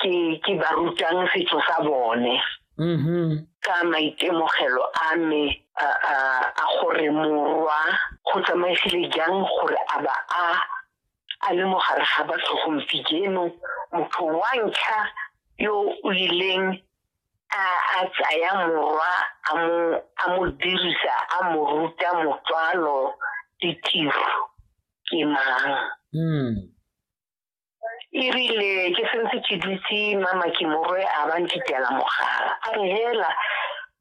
ke ke ba rutang setso sa bone mm-hmm. ka maitemogelo a me a gore morwa go tsamaisile jang gore a ba a a le mo gare ga batho gompieno motho wa ntlha yo o ileng a tsaya morwa a mo dirisa a mo ruta motswalo ditiro ke mang mm. erile ke sentse ke dutse mama ke morwe a ba ntitela mogala a re hela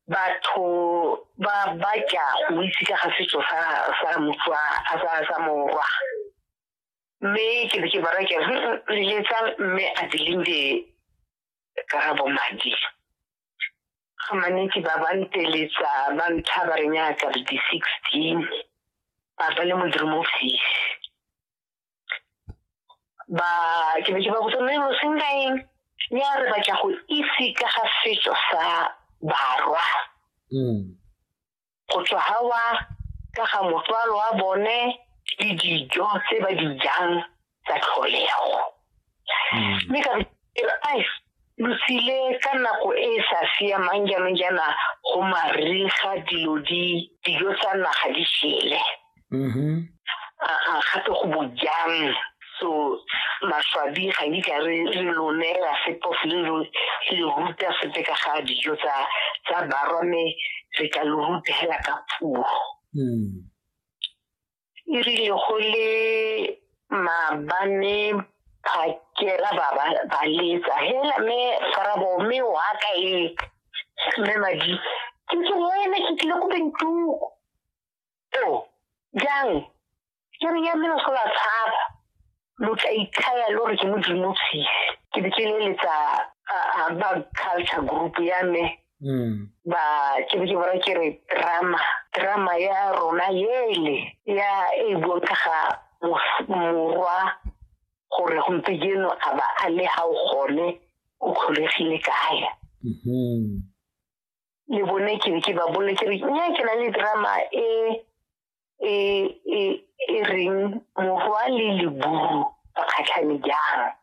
batho ba ba tla go itse ka ga setso sa sa motswa a sa sa morwa mme ke be ke bara ke letsa mme a dilinde ka bo madi ga manetsi ba ba nteletsa ba ntlha ba re nyaka di 16 ba ba le modimo ofisi ba ke be ke ba botsa mme lo sengkaeng ya re batla go itse ka ga setso sa barwa mm. go tswa gawa ka ga motswalo wa bone le dijo tse ba di jang tsa tlholego mme ka re ai lo tsile ka nako e e sa siamang jaanong jaana go mariga dilo di dijo tsa naga di shele mm-hmm. a gape go bojang so maswabi ga di ka re lo neela sepo le lo le ruta sepe ka ga dijo tsa tsa barwa mme re ka lo ruta hela ka puo mm. e rile go le maabane phakela ba ba letsa hela me farabo me wa ka e me madi ke ke wena ke tlile go bentuko to jang ke re ya me go la tshaba lo tla itlhaya lo re ke modimo tshise ke be ke leletsa ba culture group ya me hmm. ba ke be ke bara ke re drama drama ya rona yele ya e buang ka ga morwa gore gompieno a ba a le ga o gone o kgolegile kae mm-hmm. le bone ke be ke ba bole ke re nya ke na le drama e e e e reng mohwa le leburu ba kgatlhane jang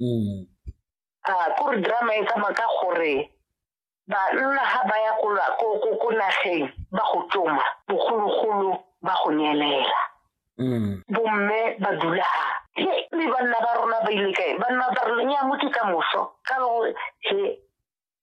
mm. a kore drama e tsamaya ka gore banna ga ba ya ko nageng ba go tsoma bogologolo ba go nyelela mm. bomme ba dula ga le banna ba rona ba ile kae banna ba rona ya motho ka moso ka gore he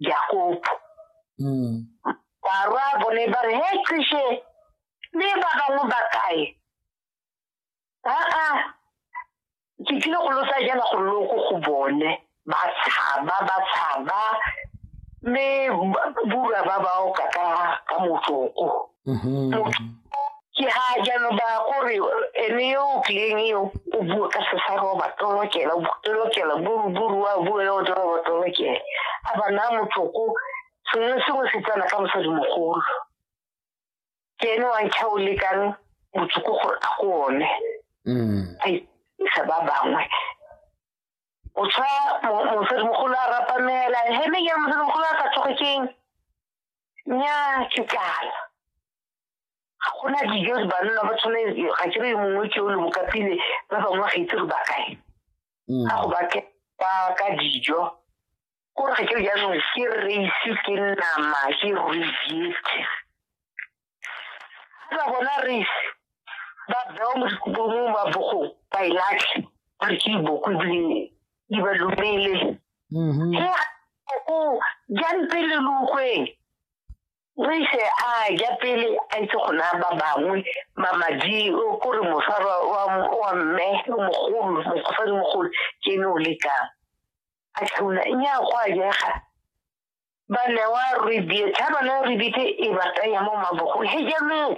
Jakopo. Mm. Barwa bo ne ba re, he qishe, le ba bangwe ba kae? Aa, ke tlile go lo tsaya jaana gore lo ko go bone. Ba tshaba, ba tshaba, mme ba- bura ba ba oka ka ka motsoko. mm-hmm. ke ha jalo ba gore ene yo o tlileng eo o bue ka sesaro ba tolokela tolokela buruburu wa bue yo tolo ba tolokela a ba na motlhoko sengwe sengwe se tsena ka mosadi mogolo ke ene wa ntlha o lekang botsoko gore a go one mm. a isa ba bangwe o tshwa mosadi mogolo a rapamela heme ya mosadi mogolo a sa tsoge keng nnyaa ke kala ga gona dijo banna ba tshwane ga ke re mongwe ke o le bokapile ba bangwe ga itse re ba kae mm. ga go ba ke ba ka dijo kore ga ke jaanong ke race ke nama ke reject ga bona race ba bewa mo dikobong ba bogong ba e latlhe ba re ke iboko ebile di ba lumele mm-hmm. he o jang pele lukgweng re ise a ja pele a itse go naya ba bangwe mamadi kore mosara wa mme mogolo mosadi mogolo ke ne o lekang a tlhauna nya go a jega ba newa rebate ha ba newa rebate e ba tsaya mo mabogong he jaanong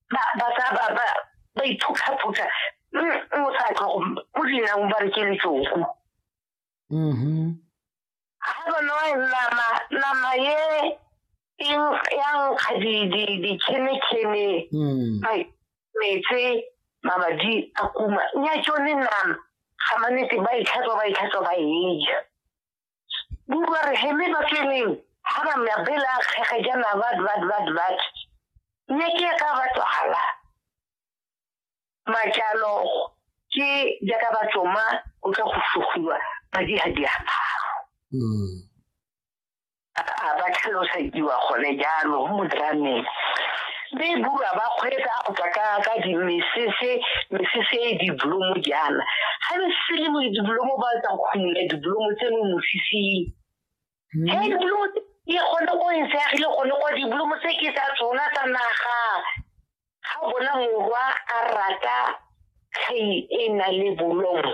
ba ba sa ba ba ba iphuthaphutha mm, o sa tlo go dinang ba re ke letsoku mm-hmm. ha ba newa nama nama ye ya nkga dikhenekene mm. metse mabadi a kuma nya tsone nama ga manetse ba itlhatswa ba itlhatswa ba eja bua re heme ba tseneng ha ba mya bela kgege jana bat bat bat bat ne ke ka ba tswala majalo ke jaaka ba tsoma o tla go sugiwa ba di ha di aparo mm. a ba tlhalosediwa gone jalo mo drameng be e bua ba kgwetsa go tswa ka ka dimesese mesese e diblomo jaana ga le sele mo diblomo ba tsa go khumula diblomo tse mo mosising hmm. he diblomo e gone go e seagile gone kwa diblomo tse ke tsa tsona tsa naga ga bona morwa a rata kgei e na le bolomo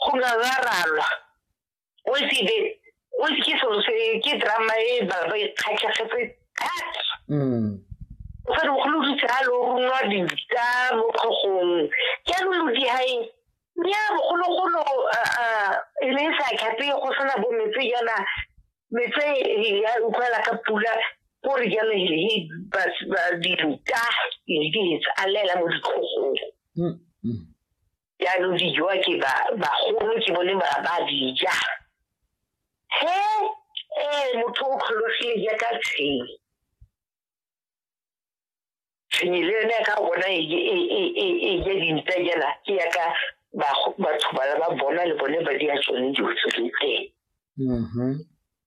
go ngangaralwa o se be o se ke selo se ke drama e ba ba ikgatlhegetse thata mm. o sa bogolo di tsaya lo runwa dita mo kgogong ke lo lo di hae nya bogologolo e ne sa khape go sena bo metse yana metse ya utlwala ka pula gore jalo he ba di ruta le di tsalela mo ditlhogong mm, mm. jaanong di jowa ke bagolo ke bone ba ba dija he ee motho o kgologile jaaka tshenyi tshenyi le yone ka bona e ja e, e, e, dintsa jana ke yaka batho ba ba bona le bone ba di a tsone dilo tse teng mm-hmm.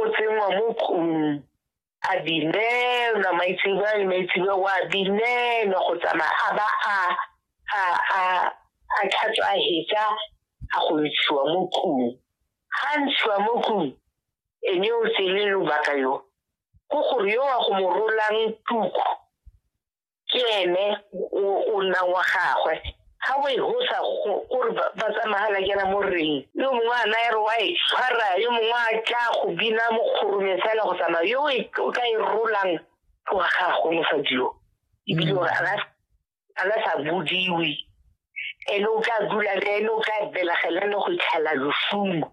o tsenngwa mo kgomong a binelwa maitsebe a le maitsebe wa binelwa go tsamaya a ba a a a a tlhatswa a hetsa a go ntshiwa mo kgong ga ntshiwa mo kgong ene o tsele lobaka yo ko gore yo wa go mo rolang tuku ke ene o nnang wa gagwe ga o e gosa gore ba tsamagala kena mo reng yo mongwe a naya re wa e tshwara yo mongwe a tla go bina mokgorume fela go tsamaya yo e, o ka e rolang ke wa gagwe mosadi yo ebile gore a la sa bodiwe ene o tla dula le ene o tla belegela ne go itlhela losumo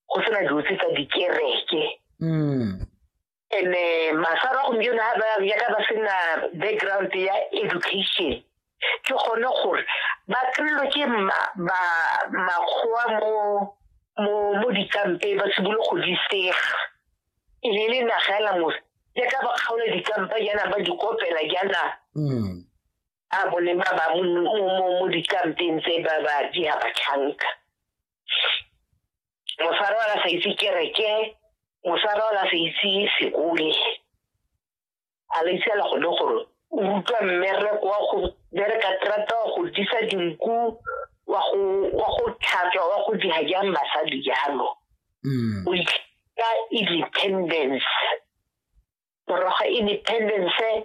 go sena dilo tse tsa dikereke mm. and eh, masaro a gompieno ga ba yaka ba sena background ya education ke gone gore ba kry-lo ke makgowa mo dikampe ba sebolo go di sega e le le nagela mose jaaka ba kgaola dikampa jaana ba di kopela jaana mm. a bone ba ba mo mo- mo- mo dikampeng tse ba ba di a batlhanka mosara wa ka sa itse kereke mosara wa ka sa itse sekole a le itse la gone gore o utlwa mmereko wa go bereka terata wa go disa dinku wa go wa go tlhatswa wa go diha jang basadi jalo Mm. o itlha independence morago ga independence